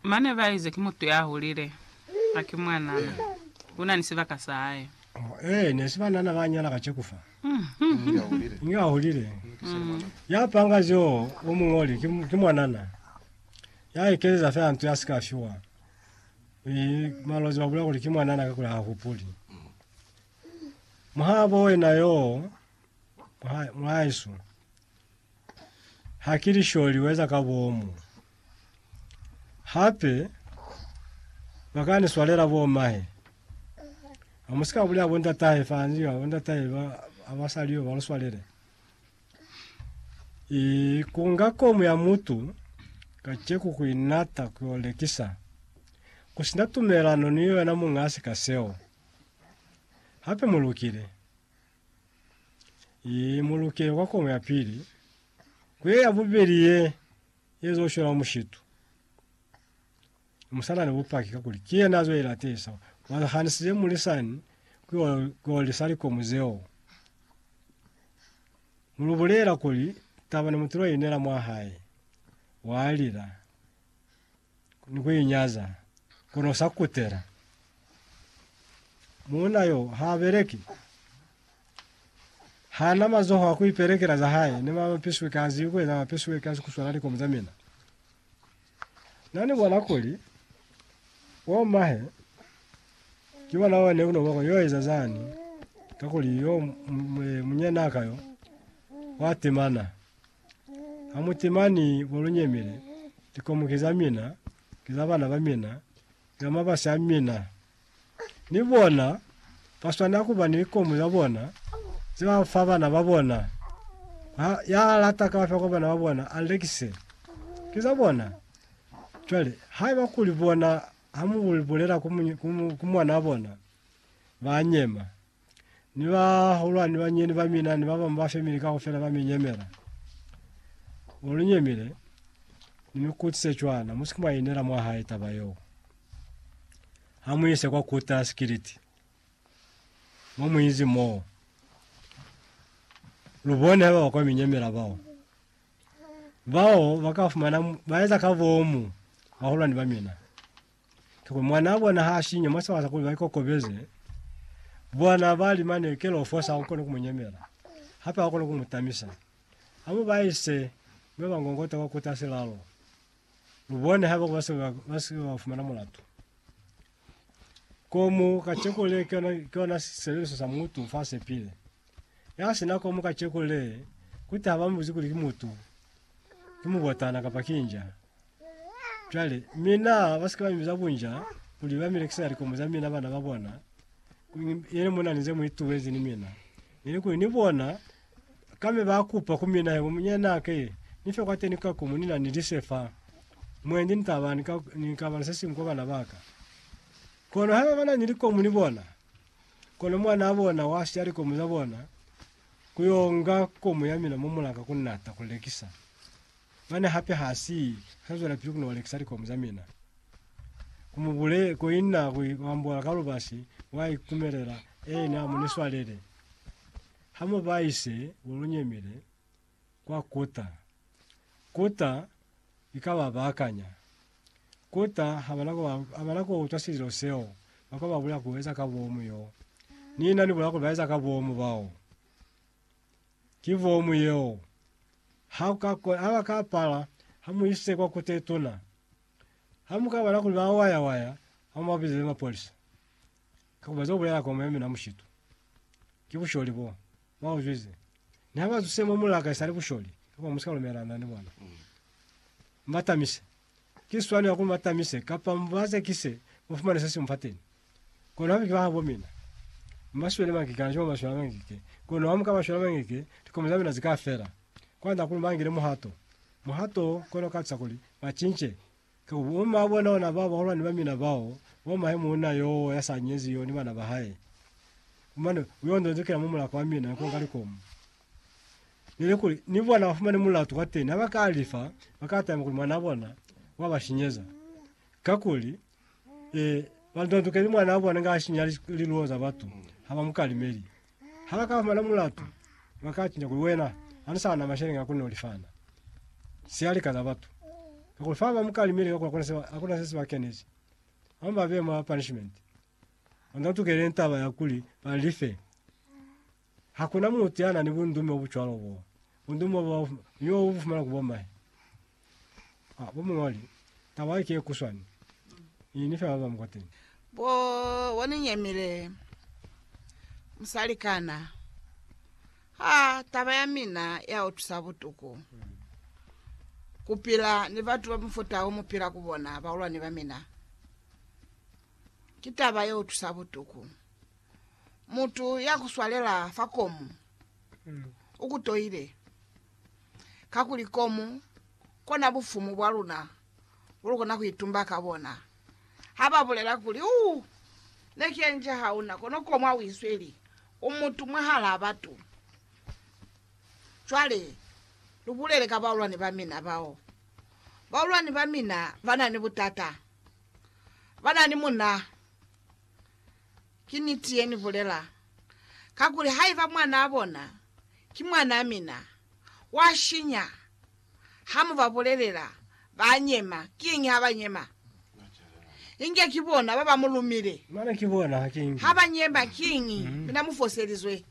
Mane ba ize, Ki mutu ya hulile, ha ki mwanana. U na ni sibaka sa hae. Ee, ne si banana ba nyala ka ceku fa. Inge ya hulile. Ya panga zeo o mu ñoli, ki, ki mwanana. Ya ekeleza fela nto ya si ka fiwa. I, malozi ba bulela kuli ki mwanana kakuli ha hupuli. Muhabo wena yoo, mwa, mwahaesu. Ha ki lisholi weza ka bomu. Hape ba ka ni swalela bo mahe. Ha mu si ka bulela bo ndatahe fa ni bo ndatahe ba ha ba sa liyo ba lu swalele. I kunga komu ya mutu kaceku ku inata ku yo lekisa ku sina tumelano ni yona munga sika seo. Hape mu lukile. Ye muluke kwa kono ya pili, ku ye ya bubeli ye ye zo shola mushitu. Musana ni bupaki ka kuli ki yena zo ilatisa, wa hanisize mulisani ku olisa likomu zeo. Mulu bulela kuli taba ni mutulo inela mwa hae, wa lila. ni ku inyaza, kono sa kutela. Muuna yo ha beleki, hana mazoho a ku ipelekela za hae, ni ma mapisweki ha ziwi ku eza mapisweki a sikuswana likomu za mina. Na ni bona kuli bo mahe ki bona one uno bako yo eza zani, kakuli yo munyenaka yo wa temana. Hamuti, Mani mo lu nyemile, likomu ki za mina, ki za bana ba mina, ki za mabasi a mina. Ni bona ba swanela ku ba ni likomu za bona ze ba fa bana ba bona. Ha, ya lata kaufela kwa bana ba bona, a lekise. Ki za bona. Cwale, haiba kuli bona ha mu bulela ku, ku mwanaa bona, ba nyema. Ni bahulwani ni banyinyani ba mina ni ba bañwi ba family kaufela ba mi nyemela. Mo lu nyemile, ni mi kutize cwana, mu si ke mwa i inela mwa hae taba yeo. Ha mu ise kwa Kuta sikiliti, mo mu izi moo, lu bone haiba ba kwa mi nyemela bao. Bao ba ka fumana, mu- ba eza ka bomu bahulwani ba mina. Ki kuli mwanaa bona ha sinya mwa sibaka sa kuli ba ikokobeze, bona bali mane kela ufosa ha ukona ku mu nyemela, hape ha ukona ku mu tamisa. Ha mu ba ise mwe ba ngongota kwa kuta silalo, lu bone haiba ba se ba se ba fumana mulatu. Komu kacheku le ki yona ki yona sisebeliso sa mutu fa sepile. Ya sina komu kacheku le, kuti ha ba mu buzi kuli ki mutu, ki mubotana kapa ki inja. Cwale, mina, ba si ke ba mi biza bunja, kuli ba mi lekisela likomo za mina, bana ba bona, yeli mu na ni ze mu ituezi ni mina. Neli kuli ni bona, kame ba kupa ku mina, Hebo, munyana, ke ni fe kwateni ka komo, ni na ni lise fa. Mwendi ni taba, ni ka, ni ka bala se siñwi kwa bana ba ka. Kono haiba ba na ni likomo ni bona, kono mwanaa bona wa siya likomo za bona, ku yo nga komo ya mina mo mulaka ku nata ku lekisa. Mane hape ha si ka zwelapili ku no lekisa likomu za mina. Ku mu bule, ko inna ku i ambola ka lubasi, wa i kumelela. Ee, na mu ni swalele. Ha mu ba ise ku lu nyemile kwa kuta. Kuta i ka ba bakanya. Kuta ha ba na ku ba, ha ba na ku utwa sililo seo ba ka ba bulela ku eza ka bomu yo. Ni na ni bulela kuli ba eza ka bomu bao. Ki vomu yeo. Ha uka kona, ha ba ka pala, ha mu ise kwa kute tuna. Ha mu ka bona kuli ba waya waya, ha mu ba bizele mapolisa. Ka ku ba zo bulela komo ya mina mushitu. Ki busholi bo. Mwa uzwize. Ni ha ba zuse mo mulaka isali busholi, ka kwa mu sika lumelana ni bona. Mu ba tamise. ki swani ya kuli mu ba tamise kapa mu ba zekise, mu fumane se si mu fa teni. Kono ha mu ki ba habo mina, mu ba swele mangeke hana cwalo mu ba swela mangeke. Kono ha mu ka ba swela mangeke, likomo za mina zi ka fela. Kwand'a kuli ba ngile muhato. Muhato wo kona ku katisa kuli ba cince. Ka ku bu ma bona ona bao bahulwani ba mina bao, bo mahe muuna yo ya sa nyezi yo ni bana ba hae. Mane u yo ndondokela mwa mulaka wa mina ku nga likomo. Neli kuli ni bona bafumane mulatu kwateni ha bakalifa, bakatama kuli mwanaa bona wabashinyeza. Kakuli, eh, bandondokeli mwanaa bona nga ashinya liluo za batu, habamukalimeli. Ha bakafumana mulatu, bakacinca kuli wena hanu sana masheleñi akona ulifana sialika za batu. Kakuli fa bamukalimeli kakuli akona se, akona sesi bakenezi. Hama babeya mwa punishment. Bandondokeli taba ya kuli balife. Hakuna mutu ya na ni bundume bo bu cwalo bo. Bundume bo ni bo bu bu fumana ku bo mahe. Ah, bo muñoli, taba ki ye kuswani. I ni fe ba ba mu kwateni. Bo, bo ni nyemile, musalikana. Ha, taba ya mina ya utwisa butuku. Ku pila ni batu ba mufuta wo mu pila ku bona, bahulwani ba mina. Ki taba ye utwisa butuku. mutu ya kuswalela fa komu ukutoile, kakuli komu kona bufumu bwa luna bulukona kuitumba ka bona. Haba bulela kuli, Uu, ne ki enja hauna, kono komu ha uisweli, u mutu mwahalaa batu. Cwale, lubulele ka baulwani ba mina bao. Baulwani ba mina bana ni butata, bana ni muna. Ki niti ye ni bulela, kakuli haiba mwanaa bona ki mwanaa mina, wa shinya. Ha mu ba bulelela, ba nyema. Kiñi ha ba nyema? Inge ki bona ba ba mu lumile. Ha ba nyema, kiñi? Mina mu foselizwe.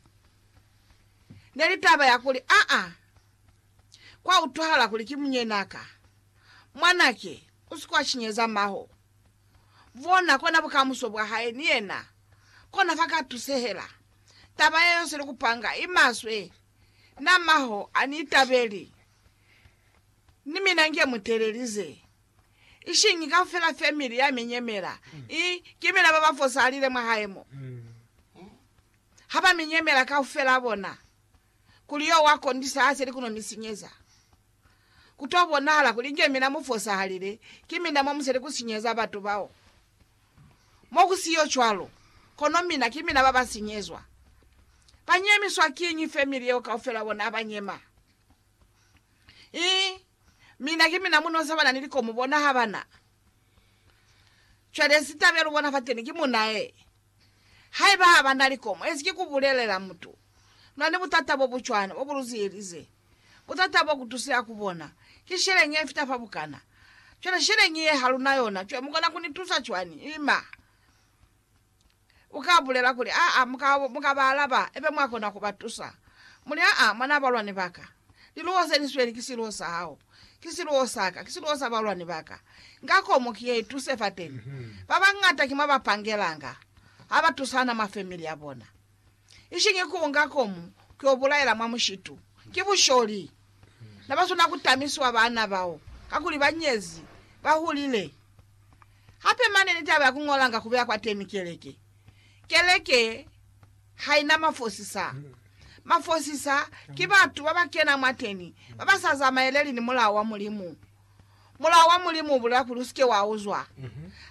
Ne li taba ya kuli, Aa, kwa utwahala kuli ki munyenaa ka. Mwanake, u si ke wa shinyeza maho. Bona kona bukamuso bwa hae ni yena kona fa ka tusehela. Taba yeo seli kupanga i maswe. Na maho a ni itabeli, ni mina nge mu telelize. Ishiñi kaufela family ya mi nyemela, i ki mina baba fosalile mwa hae mo. Ha ba mi nyemela kaufela bona, kuli yo wa kondisa haze li kuno mi sinyeza. Ku to bonahala kuli nge mina mu fosahalile, ki mina mo mu seli ku sinyeza batu bao. Mo ku si yo cwalo, kono mina ki mina ba ba sinyezwa. Ba nyemiswa kiñi family yeo kaufela bona ha ba nyema? Ii, Mina ki mina mu nosa bana ni likomo bona ha ba na. Cwale sitabelo bona fateni ki munae Haiba haba na likomo, ezi ki ku bulelela mutu na ni butata bo bu cwana bo bu lu ziyelize. Butata bo ku tusila ku bona ki sheleñi ye fita fa bukana. Cwale sheleñi ye ha lu na yona, cwale mu kona ku ni tusa cwani? Ima. U ka bulela kuli, Aa, mu ka, mu ka ba alaba, ibe mwa kona ku ba tusa. Mu li, Aa, mwanaa balwani ba ka. Liluwo ze li sweli ki siluwo sa hao, ki siluwo sa ka, ki siluwo sa balwani ba ka. Nga komu ki ye i tuse fateni. Ba bañata ki mwa ba pangelanga, ha ba tusana mwa family ya bona. Ishiñi ku nga komu ki yo bulaela mwa mushitu. Ki busholi. Na ba swana ku tamisiwa baana bao, kakuli ba nyezi, ba hulile. Hape mane ni taba ya ku ñolanga ku beya kwateni keleke. Keleke haina mafosisa. Mafosisa ki batu babakena mwateni babasa zamaeleli ni Mulao wa Mulimu. Mulao wa Mulimu ubulela kuli usike wauzwa.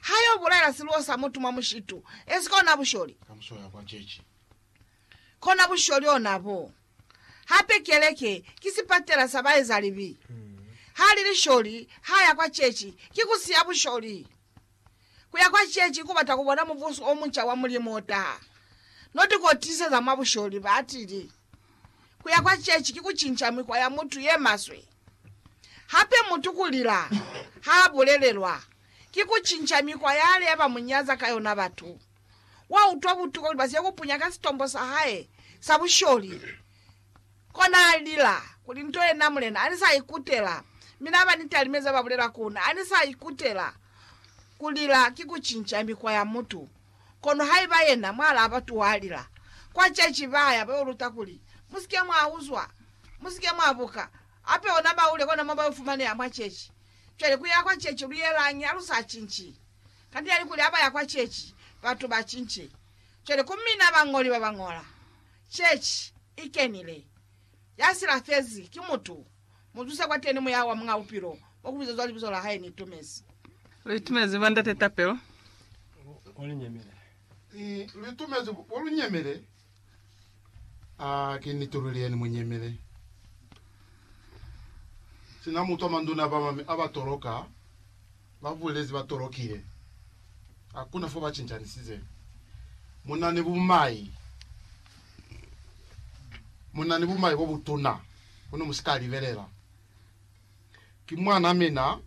Hayo bulaela siluo sa mutu mwa mushitu, esika ona busholi. Kona busholi ona bo. Hape keleke ki sipatela sa baezalibi. Hali lisholi haya kwa chechi, ki kusiya busholi. Ku ya kwa ceeci ku bata ku bona Mubuso o munca wa Mulimu o taha. No ti ko tiseza mwa busholi, ba tili. Ku ya kwa ceeci ki ku cinca mikwa ya mutu ye maswe. Hape mutu ku lila ha a bulelelwa, ki ku cinca mikwa ya lea ba mu nyaza ka yona batu. Wa utwa butuku lubasi yo ku punya ka sitombo sa hae sa busholi. Kona alila kuli, Nto yena mulena ani sa ikutela, mi na ba ni talime za ba bulela ku na, ani sa ikutela. Ku lila ki ku cinca mikwa ya mutu. Kono haiba yena mwa laba tu wa lila. Kwa ceci ba ya ba yo luta kuli, Mu si ke mwa uzwa. Mu si ke mwa buka. Hape ona ba ule kona mo ba yo fumaneha mwa ceci. Cwale ku ya kwa ceci lu yelañi ha lu sa cinci? Kanti na ni kuli ha ba ya kwa ceci, batu ba cinci. Cwale ku mina bañoli ba ba ñola, Chechi i kenile, ya silafezi ki mutu, mu zuse kwateni Muyaha wa Muñ'a Bupilo, mo ku bizezwa Libizo la Hae. Ni itumezi. Lu itumezi ba Ndate tapelo. Bo lu nyemile. I, lu itumezi bo lu nyemile. A ki niti luli yeni, mu nyemile. Sina mutu a manduna a bamami a ba toloka. ba bulezi ba tolokile. Hakuna fo ba cincanisize. Mu na ni bumai. Mu na ni bumai bo butuna, kono mu si ka libelela. Ki mwan'a mina.